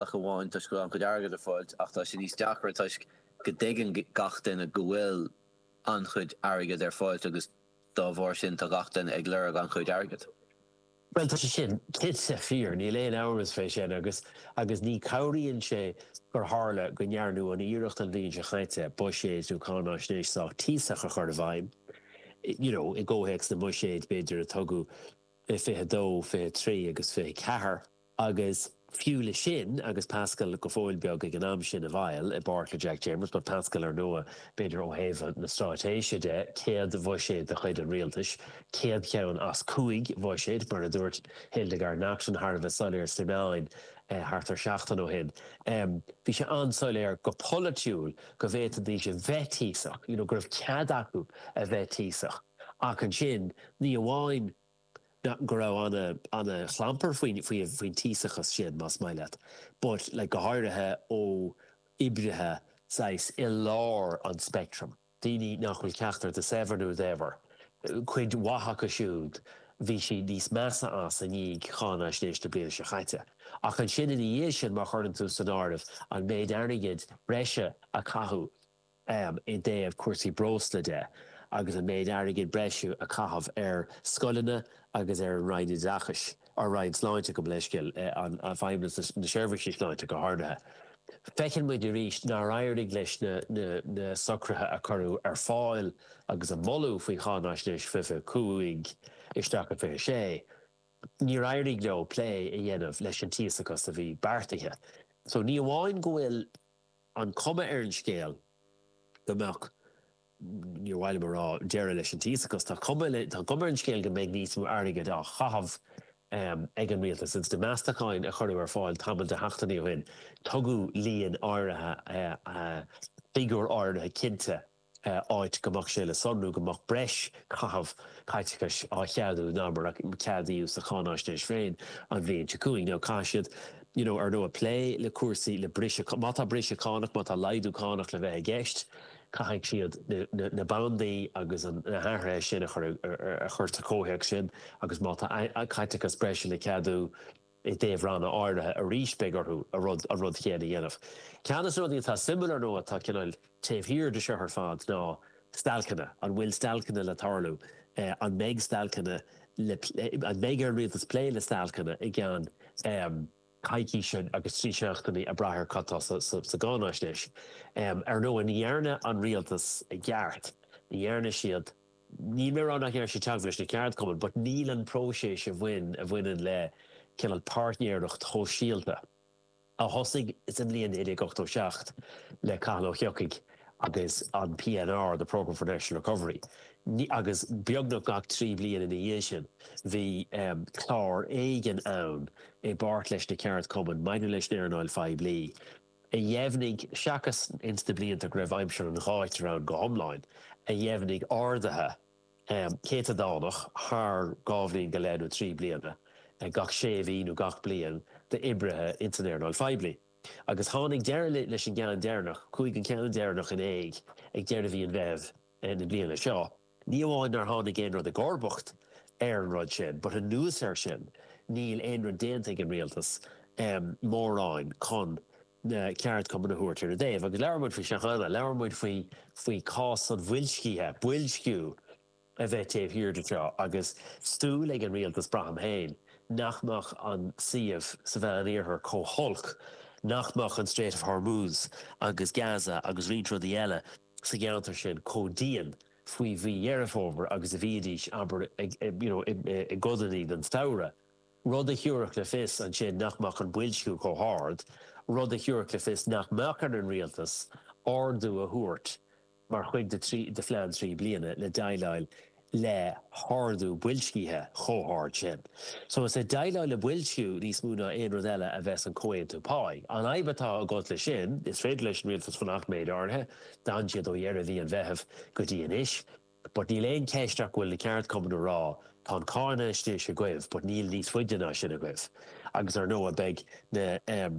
ach amháin toisc go raibh an-chuid airgid ar fáil, ach tá sé níos deacra toisc go dtuigeann gach duine go bhfuil an-chuid airgid ar fáil agus dá bharr sin tá gach duine ag lorg an-chuid airgid. Bhuel, tá sé sin cinnte fíor, níl aon amhras faoi sin, agus agus ní cabhraíonn sé gur tharla go ndearnadh an iarracht an bhliain seo chaite buiséad nó cáinaisnéis sách tíosach a chur i bhfeidhm, you know, i gcomhthéacs na mbuiséad, b'fhéidir, a tugadh i 22, 23 agus 24. Agus fiú le sin, agus Paschal go fóill beag ag an am sin i bhfeighil, i bpáirt le Jack Chambers, ba Paschal ar ndóigh, b'fhéidir ó thaobh na stráitéise de, céad bhuiséad de chuid an rialtais, céad cheann as cúig bhuiséad, mar a dúirt Hildegarde Naughton thar a bheith soiléir sna meáin thart ar seachtain ó shin. Bhí sé an-soiléir go polaitiúil go bhféadfaidís a bheith tíosach, you know, go raibh cead acu a bheith tíosach, ach ansin, ní amháin go raibh an-chlampar faoin tíosachas sin, más maith leat, but go háirithe ó oibrithe saghas i lár an speictrim, daoine nach bhfuil ceachtar de saibhir nó daibhir, cuid mhaith acu siúd, bhí siad níos measa as i ndiaidh cháinaisnéis na bliana seo caite. Ach ansin ina dhiaidh sin, má chuireann tú san áireamh an méid airgid breise a caitheadh, i dtaobh cúrsaí breosla de agus an méid airgid breise a caitheadh ar scoileanna agus ar an Roinn Oideachais, an Roinn Sláinte, gabh mo leithscéal, an Feidhmeannas na Seirbhíse Sláinte go háirithe. Feiceann muid arís nár éirigh leis na socruithe a cuireadh ar fáil agus a moladh faoi Cháinaisnéis Fiche cúig isteach go Fiche sé, níor éirigh leo plé a dhéanamh leis an tíosachas a bhí beartaithe. So ní amháin go bhfuil. an chuma ar an scéal go mbeadh, níor mhaith liom a rá, deireadh leis an tíosachas, tá cuma ar an scéal go mbeidh níos mó airgid á chaitheamh ag an rialtas. Ins na meastacháin a cuireadh ar fáil tamall de sheachtainí ó shin, tugadh líon áirithe, figiúr áirithe cinnte, áit go mbeadh sé le sonrú go mbeadh breis caitheamh caiteachais á cheadú ná mar a ceadaíodh sa cháinaisnéis féin an bhliain seo caite. Now, caithfidh siad, you know, ar ndóigh plé le cúrsaí, le briseadh cá-, má tá briseadh cánach, má tá laghdú cánach le bheith i gceist, caithfidh siad na bandaí agus na hathruithe sin a chur ar a chur sa chomhthéacs sin agus má tá caiteachas breise le ceadú, I dtaobh ranna áirithe arís beidh orthu an rud céanna a dhéanamh. Ceann de na rudaí atá suimiúil ar ndóigh, atá cineál taobh thiar de seo ar fad, ná stailceanna. An bhfuil stailceanna le tarlú? An mbeidh stailceanna le plé? An mbeidh ar an rialtas plé le stailceanna i gceann coicíse agus trí seachtainí ag brath ar cad tá sa gcáinaisnéis? Ar ndóigh ní dhearna an rialtas i gceart, ní dhearna siad. níl mé ag rá nach ndearna siad teagmháil leis na ceardchumainn, but níl an próiseas a bhain, a bhaineann le cineál páirtnéireacht shóisialta, a thosaigh sa mbliain 1987 le Cathal Ó hEochaidh agus an PNR, the Programme for National Recovery, ní, agus beagnach gach trí bliana ina dhiaidh sin bhí clár éigin ann i bpáirt leis na ceardchumainn maidir leis an earnáil phoiblí. a dheimhnigh, seachas ins na blianta go raibh aimsir an ghátair ann go hiomlán, a dheimhnigh arduithe céatadánach thar dhá bhliain go leith nó trí bliana gach sé mhí nó gach bliain d'oibrithe ins an earnáil phoiblí. Agus tháinig deireadh leis an gceann deireanach, chuaigh an ceann deireanach in éag ag deireadh mhí an Mheithimh na bliana seo. Ní amháin nár tháinig aon rud i gcomharbacht ar an rud sin, but anuas air sin, níl aon rud déanta ag an rialtas, em, mórán chun na ceardchumainn a thabhairt ar a dtaobh. Agus labhair muid faoi seo cheana, labhair muid faoi, faoi chás an bhoilscithe, boilsciú a bheith taobh thiar de seo agus súil ag an rialtas, braithim féin, nach mbeadh an suíomh sa Meánoirthear chomh holc, nach mbeadh an Strait of Hormuz agus Gaza agus roinnt rudaí eile, sa gceantar sin chomh dian faoi mhí Dheireadh Fómhair agus a bhíodar, abair, you know, i gcodanna den samhradh, rud a thiúrfadh le fios ansin nach mbeadh an boilsciú chomh hard, rud a thiúrfadh le fios nach mbeadh ar an rialtas ardú a thabhairt mar chuid de phlean trí bliana le déileáil le hardú boilscithe chomh hard sin. So is ag déileáil le boilsciú níos mó ná aon rud eile a bheas an comhaontú páí. An fhadhb atá agat leis sin, is féidir leis an rialtas fanacht méid áirithe, d'fhan siad ó dheireadh mhí an Mheithimh go dtí anois, but níl aon cheist ach go bhfuil na ceardchumainn ag rá, tá an cháinaisnéis agaibh but níl níos faide ná sin agaibh agus ar ndóigh beidh na.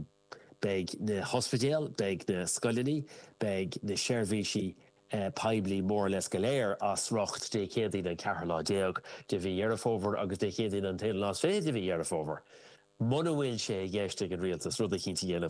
Beidh na hospidéil, beidh na scoileanna, beidh na seirbhísí poiblí more or less go léir as riocht Dé Céadaoin an ceathrú lá déag de mhí Dheireadh Fómhair agus Dé Céadaoin an t-aonú lá is fiche de mhí Dheireadh Fómhair. Muna bhfuil sé i gceist ag an rialtas rud eicínt a dhéanamh,